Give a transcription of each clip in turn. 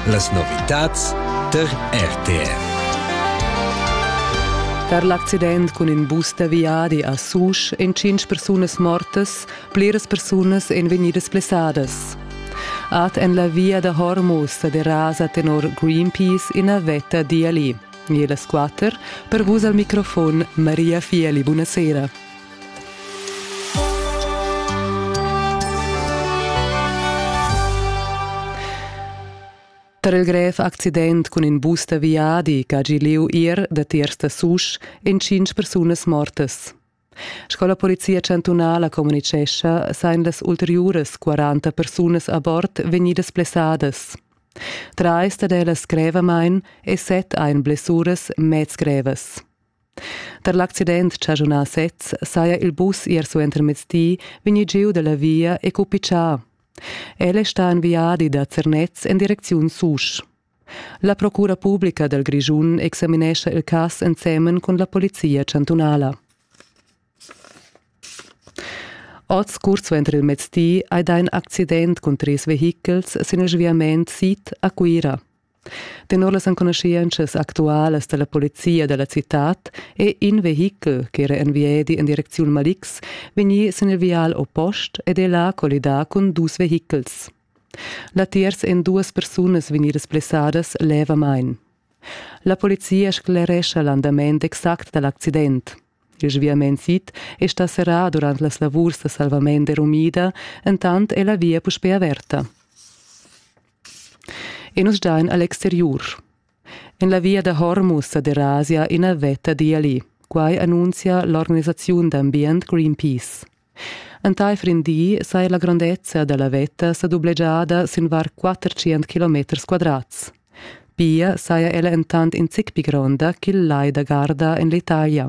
Las novitads tar RTR. Per l'accident cun in bus da viadi a Susch èn tschintg persunas mortas, pliras persunas èn vegnidas blessadas. Ad en la via da Hormuz sa derasa tenor Greenpeace ina vetta d'Iali. E las quatter, per vus al microfon Maria Fieli, buonasera. Per il grev accident cun in bus da viadi che ha gì lieu ier datiers da Susch en tschintg persunas mortas. Sco la polizia chantunala communicescha, sain las ulteriuras 40 persunas a bord vegnidas blessadas. Trais dad ellas grevamain e set ein blessuras mez grevas. Tar l'accident chaschunà sez saja il bus ier suentermezdi vegnì giu da la via e cupitschà. El è stà en viadi da Zernez en direcziun Susch. La Procura publica dal Grischun examinescha il cas ensemen cun la polizia chantunala. Oz, curt suenter il mezdi, hai dà in accident cun trais vehichels sin il sviament sid a Cuira. Tenor las enconuschientschas actualas dalla polizia dalla citad è in vehichel ch'era en viedi en direcziun Malix vegnì sin il vial oppost ed è là collidà cun dus vehichels. Latiers èn duas persunas vegnidas blessadas levamain. La polizia sclerescha l'andament exact dal accident. Il sviament sid è stà serrà durant las lavurs da salvament e rumida, entant è la via puspè averta. E nus dain a l'exteriur. En la via da Hormuz a Derasia ina vetta d'Iali. Quai annunzia l'organisaziun d'ambient Greenpeace. Entaifer in di saja la grondezza da la vetta sa dublegiada sin var 400 kilometers quadrats. Pia saja ella entant in zic pli gronda ch'il lai da Garda en l'Italia.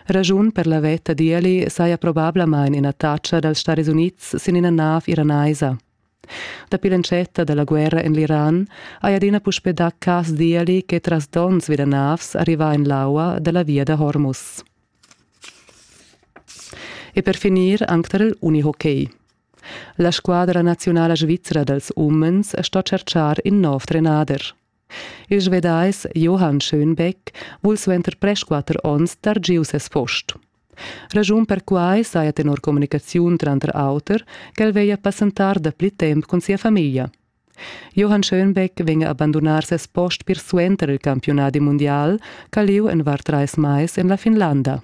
Ragiun per la vetta d'Ieli saja probablamain ina tatscha dals Stadis Unids sin ina nav iranaisa. Dapi l'entschetta da la guerra en l'Iran hai adina puspè dà cas d'Ieli che tras donns vi da navs arrivà en l'aua da la via da Hormuz. E per finir anc tar il unihockey. La squadra naziunala svizra dals umens sto tschertgar in nov trenader. Il Svedais Johann Schönbeck vul suenter presch quatter onns dar giu ses post. Raschun per quai saja tenor communicaziun tranter auter ch'el veglia passentar dapli temp cun sia famiglia. Johann Schönbeck vegn a bandunar ses post pir suenter il campiunadi mundial ch'ha lieu en var trais mais en la Finlanda.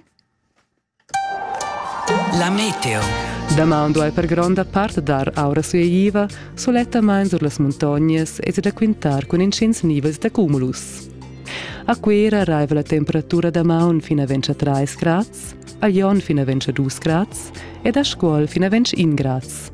La meteo. Damaun duai per gronda part dar aura sueiva, sulettamain sur las muntognas e da quintar cun intgins nivels da cumulus. A Cuera raiva la temperatura damaun fin a 23 grads, a Jon fin a 22 grads ed a Scuol fin a 21 grads.